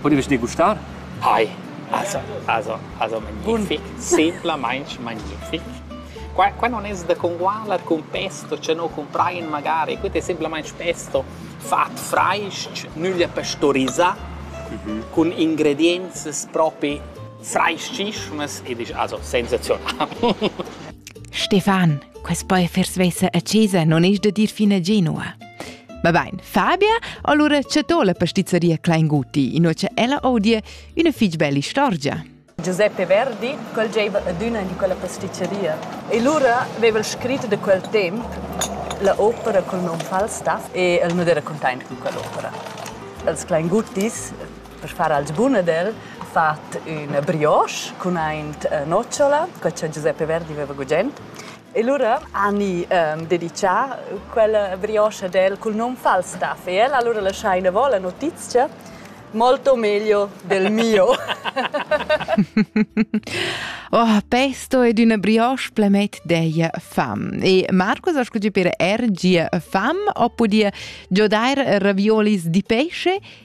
Podives degustar? Ai, also, also, also magnific, semplamaintg magnific. Qua, qua non es da congualar cun pesto, che no cumprain magari, quet è semplamaintg pesto fat frais-ch, nüglia pastorisà, mhm. cun ingredienzas propi frais-chischmas ed isch also sensazional. Stefan, quest boi vers vesa a Cesa non es da dir fina genua. Ma bain, Fabia, allura c'è to la pastizzeria Kleinguti, in c'è ella odie una fitg bella istorgia. Giuseppe Verdi quel gieva adüna di quella pastizzeria e lura aveva el scrit da quel temp la opera col nom Falstaff e el nu era containt con quell'opera. Els Kleinguttis, per far als buna del, fat una brioche con ein nocciola, quella che Giuseppe Verdi aveva gugent E lura ani ehm dedichar quella brioscha del cul nom Falstaff e el allura laschaina vo la notizia molto meglio del mio. Oh, pesto ed una brioche plemet dei fam. E Marcus, ascolti per RG fam oppure giodar raviolis di pesce